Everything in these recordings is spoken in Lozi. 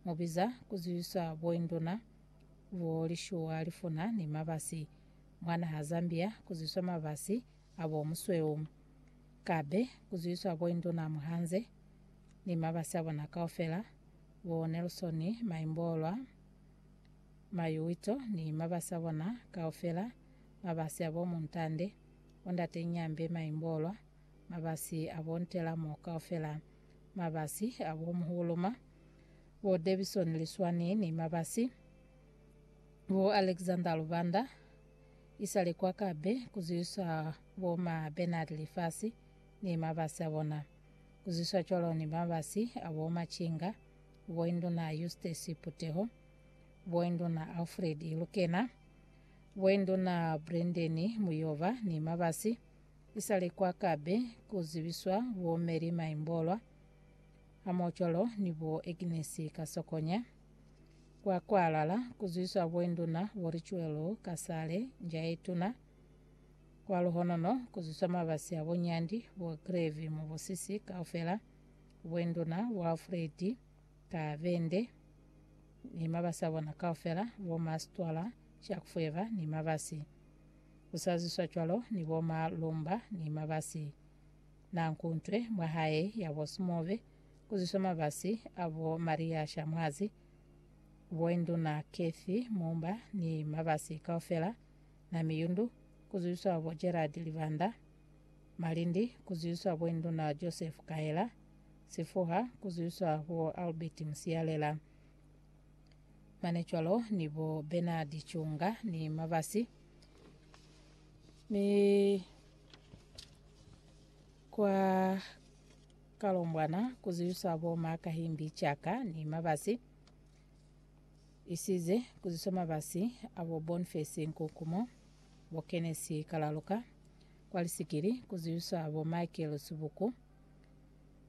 Mu biza ku zwisa boinduna, bo lishuwa lifuna ni mabasi mwa naha Zambia ku zwiswa mabasi a bo musweu. Ka be ku zwiswa boinduna muhanze ni mabasi a bona kaufela, bo Nelson Maimbolwa, Mayuwito ni mabasi a bona kaufela, mabasi a bo Muntande, bo Ndate Nyambe Maimbolwa, mabasi a bo Ntelamo kaufela. Mabasi a bo Muhuluma, bo Davison Liswani ni mabasi bo Alexander Lubanda isale kwa kabe kuzwiswa bo ma Bernard Lifasi ni mabasi a bona. Kuzwiswa cwalo ni mabasi a bo Machinga, bo Induna Eustace Puteho, bo Induna Alfred Ilukena, bo Induna Brendeni Muyoba ni mabasi. Isale kwa kabe ku zibiswa bo Mary Maimbolwa hamoocwalo ni bo Agnes Kasokonya, kwa kwalala ku zibiswa bo Induna bo Richuelu Kasale Njaetuna, kwa luhonono ku zibiswa mabasi a bo Nyandi bo Grevy Mubusisi kaufela, bo Induna bo Alfred Kabende ni mabasi a bona kaufela, bo Mastwala Shakufweba ni mabasi Ku sa zwiswa cwalo ni bo ma lumba ni mabasi. Na nku ntwe mwa hae ya bo Sumove, ku zwiswa mabasi a bo Maria Shamwazi, bo Induna Cathy Mumba ni mabasi kaufela, na Miyundu, ku zwiswa bo Gerald Livanda, Malindi, ku zwiswa bo Induna Joseph Kahela, Sifuha, ku zwiswa bo Albert Musialela. mane cwalo ni bo Bernard Chunga ni Mabasi ni kwa Kalombwana kuziyusa bo Makahimbi Chaka ni Mabasi isize kuziswa mabasi abo Bonface Nkukumo bo Kenesi Kalaluka kwa lisikili kuziyusa bo Michael Subuku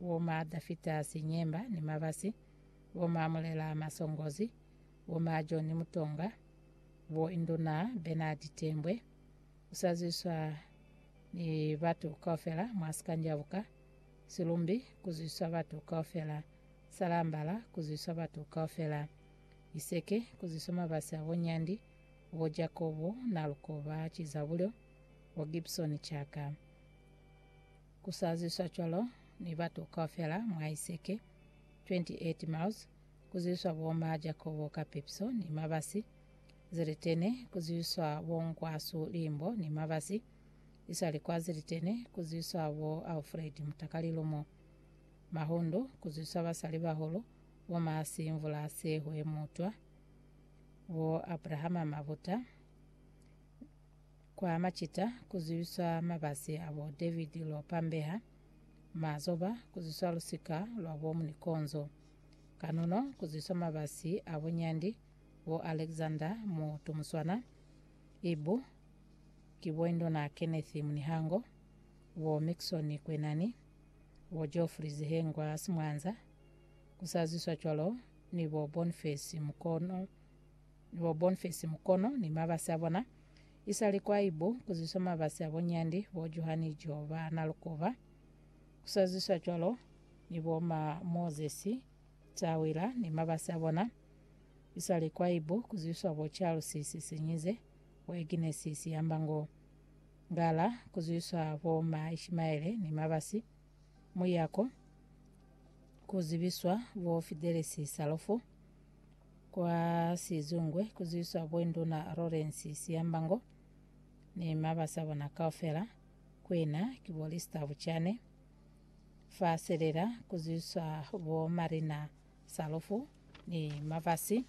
bo ma Dafitasi Nyemba ni Mabasi, bo ma Mulela Masongozi, bo ma John Mutonga, bo Induna Bernard Tembwe, usazwiswa ni batu kaufela mwa Sikanjabuka, Silumbi kuzwiswa batu kaufela, Salambala kuzwiswa batu kaufela, Iseke kuzwiswa Mabasi a bo Nyandi, bo Jakobo Nalukoba Chizabulyo, bo Gibson Chaka. Ku sa zwiswa cwalo ni batu kaufela mwa Iseke, 28 miles, ku zwiswa bo ma Jakobo ka pepiso ni mabasi, Zilitene, ku zwiswa bo Nkwasu limbo ni mabasi, iswali kwa Zilitene, ku zwiswa bo Alfred mutakalilo mo. Mahundu, ku zwiswa basali bahulu, bo ma Simvula Sehwe Mutwa, bo Abrahama Mabuta, Kwa macita ku zwiswa mabasi a bo David lwo pambeha, mazoba ku zwiswa lusika lwa bo Munikonzo, kanono ku zwiswa mabasi a bo Nyandi, bo Alexander Mutumuswana, Ibu, ki bo Indona Kenneth Munihango, bo Mickson Kwenani, bo Geoffrey Zihengwa Simwanza, ku sa zwiswa cwalo ni bo Boniface Mukono, Ni bo Bonfesi Mukono ni mabasi abona. Isali kwa ibu kuziswa mabasi abo Nyandi, bo Johani Joe ba Nalukuba. Kusaziswa cwalo ni bo ma Mozesi Tawila ni mabasi abona. Isali kwa ibu kuziswa bo Charles Sisinyize, bo Agnes Siyamba Ngo Ngala, kuziswa bo ma Ishimaele ni mabasi. Muyako, kuzibiswa bo Fidelis Salofu. Kwa Sizungwe ku zwiswa Bwenduna Lawrence Siyambango ni mabasa bona kaufela, kuina ki bo Lister Buchane. Fa Selela ku zwiswa bo Marina Salufu ni mabasi.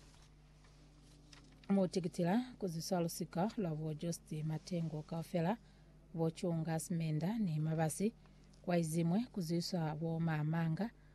Mo Tikitila ku zwiswa lusika lwa bo Jost Matengo kaufela, bo Chunga Simenda ni mabasi. Kwa Izimwe ku zwiswa bo Maamanga,